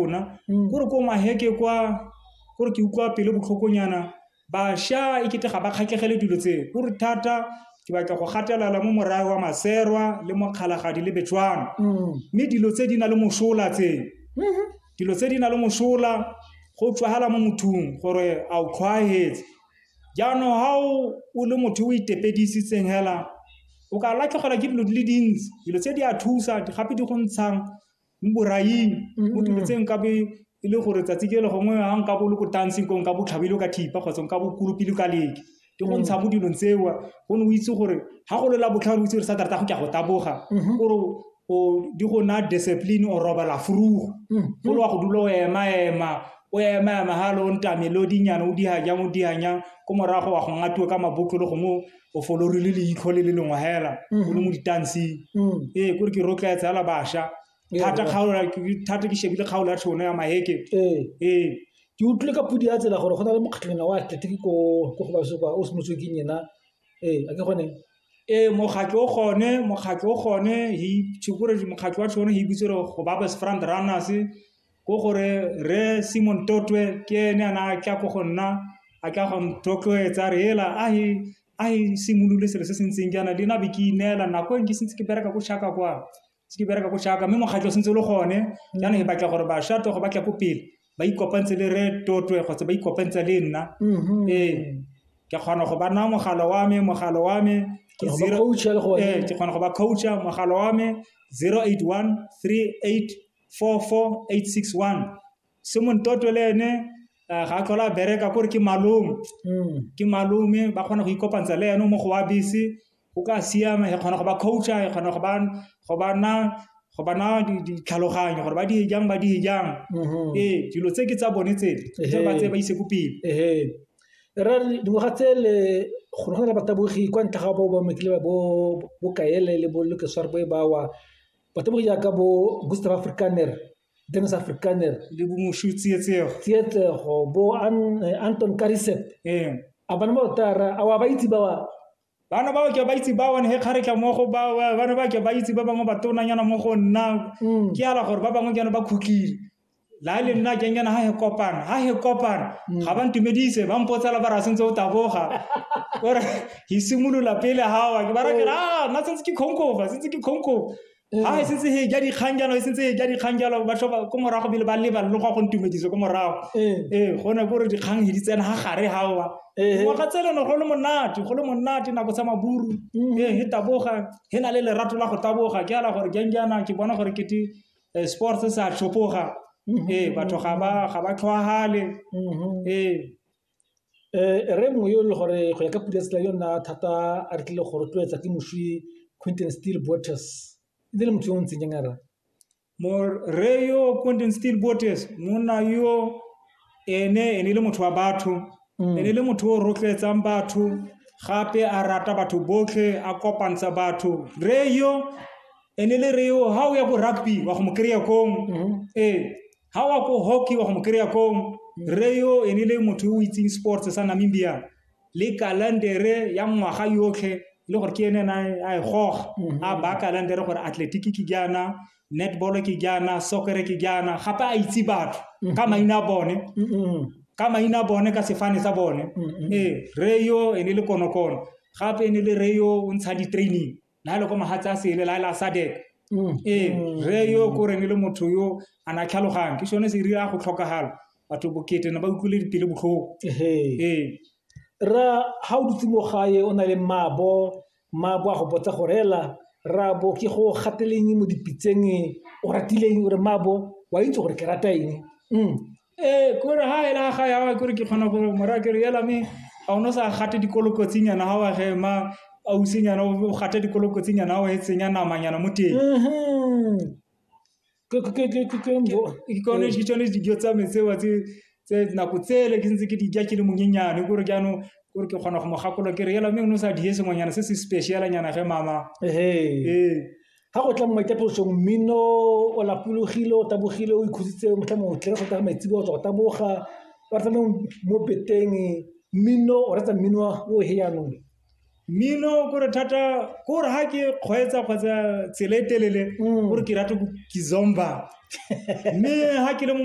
rona mm. kore ko maheke kwa kore ke utlwa pele botlhokonyana bašwa e kete ga ba kgatlhegele dilo tse kore thata ke batla go gatelela mo morae wa maserwa le mokgalagadi le betswana mm. mme dilo tse di na le mosola tse mm-hmm. dilo tse di na le mosola go tswagala mo mothong gore a o tlhwaetse jaanong ga o le motho o itepedisitseng fela o ka latlhegelwa ke dilo di le dintsi dilo tse di a thusa gape di go ntshang mo boraing mo tuletseng ka be e le gore tsatsi ke le gongwe ga nka bo le ko dancing ko nka bo tlhabile ka thipa kgotsa nka bo kolopile ka leke ke go ntsha mo dilong tseo go ne o itse gore ga go lela botlhano o itse gore sa tarata go ke go taboga gore o di go na discipline o robala furugo go le wa go dula o ema ema o ema ema ga le o ntamelo dinyana o diga jang o diga jang ko morago wa go ngatiwa ka mabotlolo gongwe o folori le leitlho le le lengwe hela o le mo ditanseng ee kore ke rotloetsa ala bašwa thata kgaola thata ke shebile kgaolo ya tšhono ya maheke ee ke utlwile ka podi ya tsela gore go na le mokgatlhonyana wa atletiki ko go basopa o semotswe ke nyena ee a ke gone ee mokgatlho o gone mokgatlho o gone he gore mokgatlho wa tšhono he bitse gore go ba best front runners Ko gore Rre Simon Totwe ke ene a na a tla ko go nna, a tla go nthotloetsa re ela a he a he simolole selo se se ntseng jaana le na be ke ineela nako e nke sentse ke bereka ko Shaka kwa se ke bereka ko Shaka mme mokgatlho sentse le gone jaanong e batla gore bašwa togo ba tla ko pele ba ikopantse le Rre Totwe kgotsa ba ikopantse le nna ee ke kgona go ba naya mogala wa me mogala wa me ke Go ba zero coacha le gone. ee ke kgona go ba coacha mogala wa me 081 38 44861 se montotwe le ene eh, ga a tlhola a bereka kore ke malome mm. ke malome ba kgona go ikopantsha le ene mo go wa bese go ka siama e kgona go ba coacha e kgona go ba go ba na go ba na ditlhaloganyo gore ba di jang ba di jang mm-hmm. ee dilo tse ke tsa bone tse tse ba tse ba ise ko pele ee ra dingwaga tse le gore go na le batabogi kwa ntle ga bo ba mekile ba bo bokaele le bo lokesware bo e bawa batho ba go jaaka bo Gustave Afrikaner, Dennis Afrikaner le bo Moshu Tsietsego Tsietsego bo Anton Karisep ee a bana ba otara a wa ba itse ba wa bana ba ke ba itse ba one he kgaretla mo go ba bana ba ke ba itse ba bangwe ba tonanyana mo go nna mm. ke ala gore ba bangwe ke ba khutlile la le nna kenyana ha he kopana ha he kopana mm. ga ba ntumedise ba mpotsela ba ra sentse o taboga ore he simolola pele gawa ke ba ra ke ra ah, nna sentse ke khonkofa sentse ke khonkofa mm. ha e sentse he ja dikgang jalo e sentse he ja dikgang jalo ba tlhoba ko morago bile ba leba le go go ntumedise ko morago mm. ee go ne gore dikgang he di tsena ga gare gawa ngwaga tsele ne go le monate go le monate nako sa maburu ee he taboga he na le lerato la go taboga ke ala gore janjana ke bona gore kete Eh, sports se a tlhopoga mm-hmm. ee eh, batho ga ba tlhwagale mm-hmm. ee eh. eh re mongwe yo e le gore go ya ka pula tsela yo nna thata a re tlile go rotloetsa ke moswi quinton steel boters e ne le motho yo o ntseng jang a ra mo re yo quinton steel boters monna yo Ene e ne e le motho wa batho, mm. e ne e le motho o rotloetsang batho gape a rata batho botlhe a kopantsha batho re yo e ne e le re yo ga o ya ko rugby wa go mo kry-a kong mm-hmm. ee ga wa ko hockey wa go mo kry-a kong re yo e ne e le motho o itseng sports sa namibia le kalandere ya ngwaga yotlhe le gore ke ene ena a e goga mm-hmm. a baya kalandere gore athletic ke jaana netball ke jaana soccer ke jaana gape a itse batho mm-hmm. ka maina a bone mm-hmm. ka maina a bone ka sefane sa bone mm-hmm. ee re yo e ne le konokono gape e ne le re yo o ntsha di-training la le ko magatse a sele la e la sadek mm. ee re yo ko re ne le motho yo a na tlhalogang ke sone se e rira go tlhokagala batho bokete na ba utlwile dipele botlhoko ee ra ga o dutse mo gae o na le mmabo Mmaagwe a go botsa gore hela Rraabo ke go gateleng mo dipitseng o ratileng gore Mmaabo wa itse gore ke rata eng mm. ee kore ha ela ga ya kore ke kgona gore mora kere yela me ga o no sa gate dikolokotsinyana ga wa ge ma ausenyana o gate dikolokotsinyana ga wa e tsenya namanyana mo teng mm-hmm. ke gone ke tsone dijo tsa me tseo tse nako tsele ke ntse ke di ja ke le monyenyane kore jaanong kore ke kgona go mo gakolola ke re ela mme o ne o sa die sengwenyana se se special nyana ge mama ee ga go tla mo maitaposong mmino o lapologile o tabogile o ikhuditse motlha mongwe tlhe go tla maitsebo o tswa go taboga ba tsamaya mo beteng mmino o retsa mmino o he jaanong mmino kore thata kore ha ke kgweetsa kgotsa tsela e telele gore ke rate ke zomba mme ha ke le mo